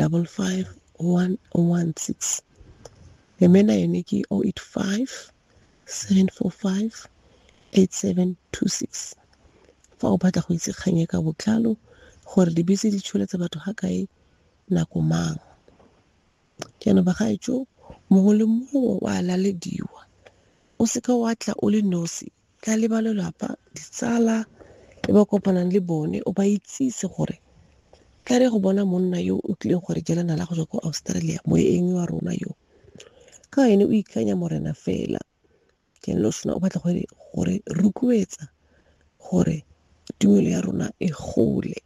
double five one one six le mena yone ke o oh eight five seven four five eight seven two six fa o batla go itse kgang e ka botlalo gore dibese di tsholetsa batho ga kae nako mang jaanong bagaetso mongwe le mongwe wa lalediwa o seka wa tla o le nosi Tla le ba lelapa, ditsala e ba kopanang le bone, o ba itsise gore tla re go bona monna yo o tlileng gore jela nala go tswa ko Australia, moeng wa rona yo. Ka ene o ikanya morena fela. Ke lo sona o batla gore gore rukuetsa gore tumelo ya rona e gole.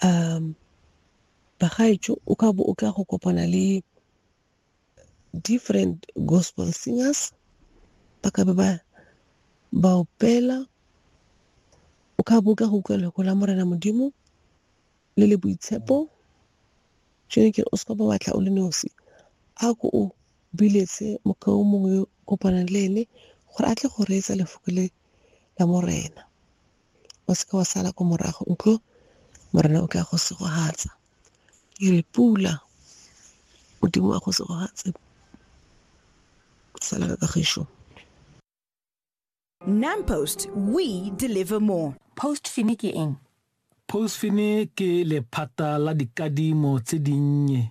Um, bagaetsho o ka bo o tla go kopana le different gospel singers ba ka be ba ba opela o ka bo ka go utlwa lego la morena modimo le le boitshepo jone ke o seka ba batla o le nosi a ko o biletse mokao mongwe yo kopanang le ene gore a tle go reetsa lefoko le la morena o seke wa sala ko morago nkgo Morena o tla go segogatsa. Ke re pula Modimo wa go segogatse sala ka kagišo. NamPost, we deliver more. Postfini ke eng? Postfini ke lephata la dikadimo tse dinnye